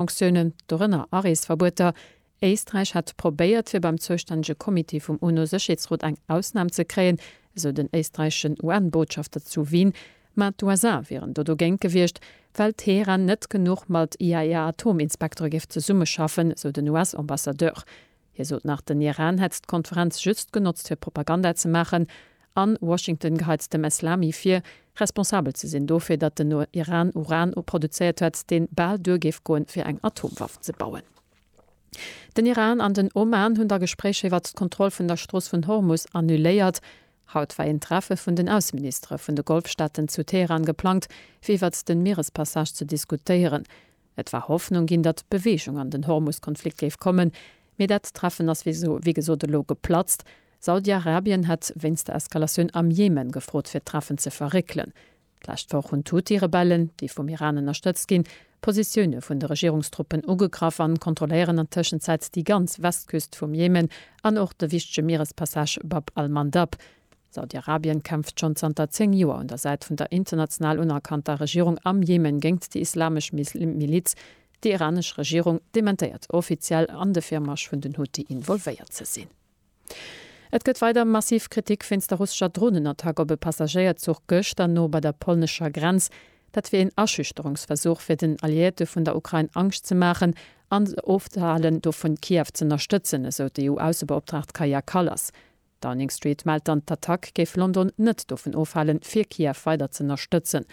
Sanktiounen, dorënner Areesverbueter. Éisträich hätt probéiert, fir beim zoustännege Comité vum UNO-Sécherheetsrot eng Ausnam ze kréien, esou den éisträicheschen UN-Botschafter zu Wien. Mä d'USA wieren do dogéint gewiescht, well Teheran net genuch mat IAEA-Atominspektere géif zesummeschaffen, esou den US-Ambassadeur. Hie sot nach, den Iran hätt d'Konferenz just genotzt fir Propaganda ze maachen an Washington geheit dem Eslami vir, responsabel ze sinn dofir, datt den Iran Uran produzéiert hätt, deen bal duer géif goen, fir eng Atomwaff ze bauen. Den Iran an den Oman hunn da Gespréicher iwwert d'Kontroll vun der Strooss vun Hormus annuléiert. Haut war een Treffe vun den Ausseministere vun de Golfstaaten zu Teheran geplangt, fir iwwert den Mierespassage ze diskutéieren. Et war Hoffnung ginn, datt Beweegung an den Hormus-Konflikt géif kommen, mee dat Treffen ass wéi gesot elo geplatzt. Saudi-Arabien hätt wéinst der Eskalatioun am Jemen gefrot fir d'Treffen ze verréckelen. D'lescht Woch hunn d'Huthi-Rebellen, déi vum Iran ënnerstëtzt ginn, d'Positioune vun de Regierungstruppen ugegraff an kontrolléieren an Tëschenzäit déi ganz Westküst vum Jemen an och de wichtege Mierespassage Bab al-Mandab. Saudi-Arabien kämpft schonn zanter 10 Joer un der Säit vun der international unerkannter Regierung am Jemen géingt déi islamesch Miliz. Déi iranesch Regierung dementéiert offiziell an de Virmarsch vun den Huthi involvéiert ze sinn. Et gëtt weider massiv Kritik wéinst der russescher Dronenattack op e Passagéierzuch gëschter no bei der polnescher Grenz. Dat wier een Aschüchterungsversuch fir den Alliéierte vun der Ukrain Angscht ze maachen an se ofzehalen dovun Kiew z'ënnerstëtzen, esou d'EU-Aussebeoptraagt Kaja Kallas. Downing Street mellt dann, d'Attack géif London net dovun ofhalen, fir Kiew weider z'ënnerstëtzen.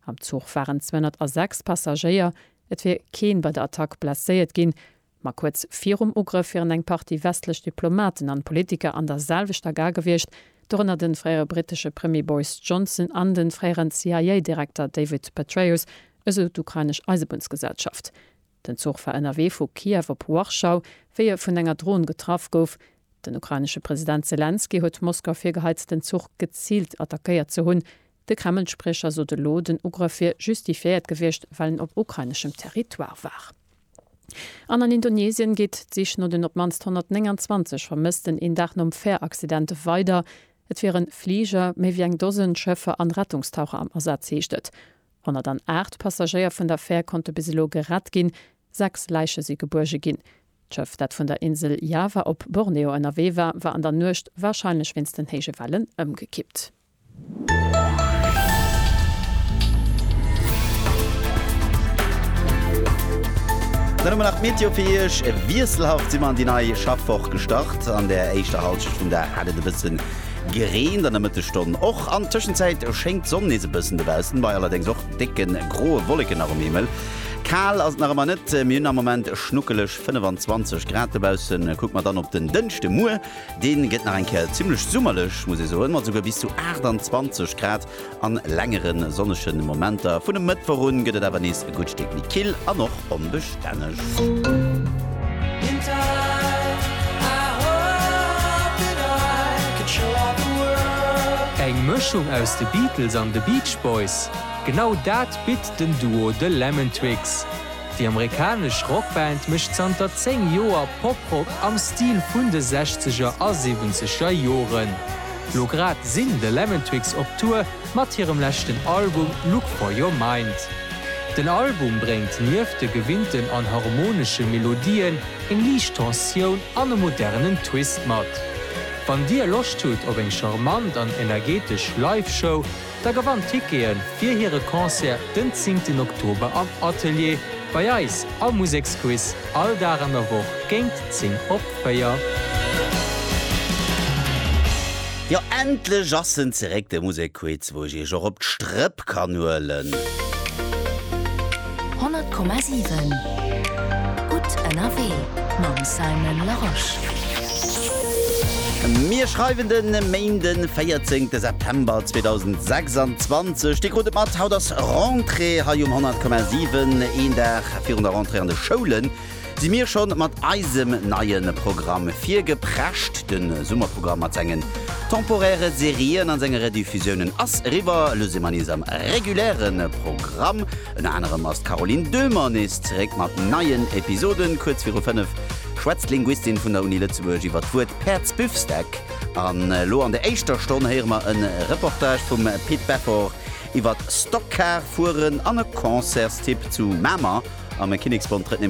Am Zuch waren 206 Passagéier. Et wier kee bei der Attack blesséiert ginn. Ma kuerz virum Ugrëff wieren eng Partie westlech Diplomaten an Politiker an der selwechter Gar gewiescht, dorënner den fréiere brittesche Premier Boris Johnson an den fréieren CIA-Direkter David Petraeus, esou d'ukrainesch Eisebunnsgesellschaft. Den Zuch war ënnerwee vu Kiew op Warschau, wéi e vun enger Dron getraff gouf. Den ukrainesche President Selenskyj huet Moskau virgeheit, den Zuch geziilt attackéiert ze hunn. De Kreml-Spriecher sot elo, den Ugrëff wier justifiéiert gewiescht, well en op ukraineschem Territoire war. An an Indonesien geet d'Sich no den op d'mannst 129 Vermëssten een Dag nom Fähr-Accident weider. Et wiere Fliger, méi wéi eng Dosen Schëffer an Rettungstaucher am Asaz, heescht et. 108 Passagéier vun der Fär konnte bis elo gerett ginn, sechs Läiche si gebuerge ginn. D'Schëff, dat vun der Insel Java op Borneo ënnerwee war, war an der Nuecht, warscheinlech wéinst den héije Wellen, ëmgekippt. Dann hu mer nach d'Meteo fir Iech. Wiesselhaft si mer an déi nei Schaffwoch gestart. An der éischter Halschent vum Dag hat et e bësse. Gereent an der Mëttesstonn och. An Tëschenzäit schéngt d'Sonn nees e bëssen. Dobaussen bei allerdéngs och décke groe Wolleken nach um Himmel. Kal ass et nach ëmmer net, mir hunn am Moment schnuckeleg 25 Grad dobaussen. Kucke mer dann op den Dënschde muer, dee gëtt nach eng Kéier zimmlech summerlech, muss ee soen, mat esouguer bis zu 28 Grad. An längere sonnege Momenter vun e Mëttwoch un gëtt et awer nees e gutt Stéck méi kill an och onbestänneg. Eng Mëschung aus de Beatles an de Beach Boys? Genau dat bitt den Duo The Lemon Twigs. Déi amerikanesch Rockband mécht zanter 10 Joer Poprock am Stil vun de Sechzeger a Siwwenzeger Joren. Lo grad sinn The Lemon Twigs op Tour mat hirem leschten Album Look For Your Mind. Den Album bréngt nieft de gewinnten an harmonesche Melodien eng liicht Tensioun an e modernen Twist mat. Wann dir Loscht hutt op eng charmant an energetesch Live-Show, Da gewannt Tickete fir hire Concert den 10 Oktober am Atelier bei eis am Museksquiz, all Dag an der Woch géint 10 op 4. Jo, endlech ass en zeréck, de Musekquiz, wou ech iech och op d'Strëpp kann huelen. 100,7 Gutt ënnerwee mam Simon Larosche. Mir schreiwen de Méinden 14 de September 2026. Dir krut et mat, haut ass Rentrée hei um 100,7. Een Dag virun der Rentrée an de Schoulen. Si mir schonn mat eisem neien Programm virgeprescht. Den Summerprogramm mat sengen temporäre Serien an senge Rediffusiounen ass eriwwer. Elo si mer nees am regulären Programm. Ënner anerem ass d'Caroline Döhmer nees zeréck mat neien Episoden. Kuerz viru 5 schwätzt d'Linguistin vun der Uni Lëtzebuerg iwwer d'Wuert Päerdsbüffsdeck. An elo an der éischter Stonn héiere mer en Reportage vum Pit Beffort iwwert Stockcar fueren an e Concertstipp zu Mamer am Kinneksbond. Trëtt nämlech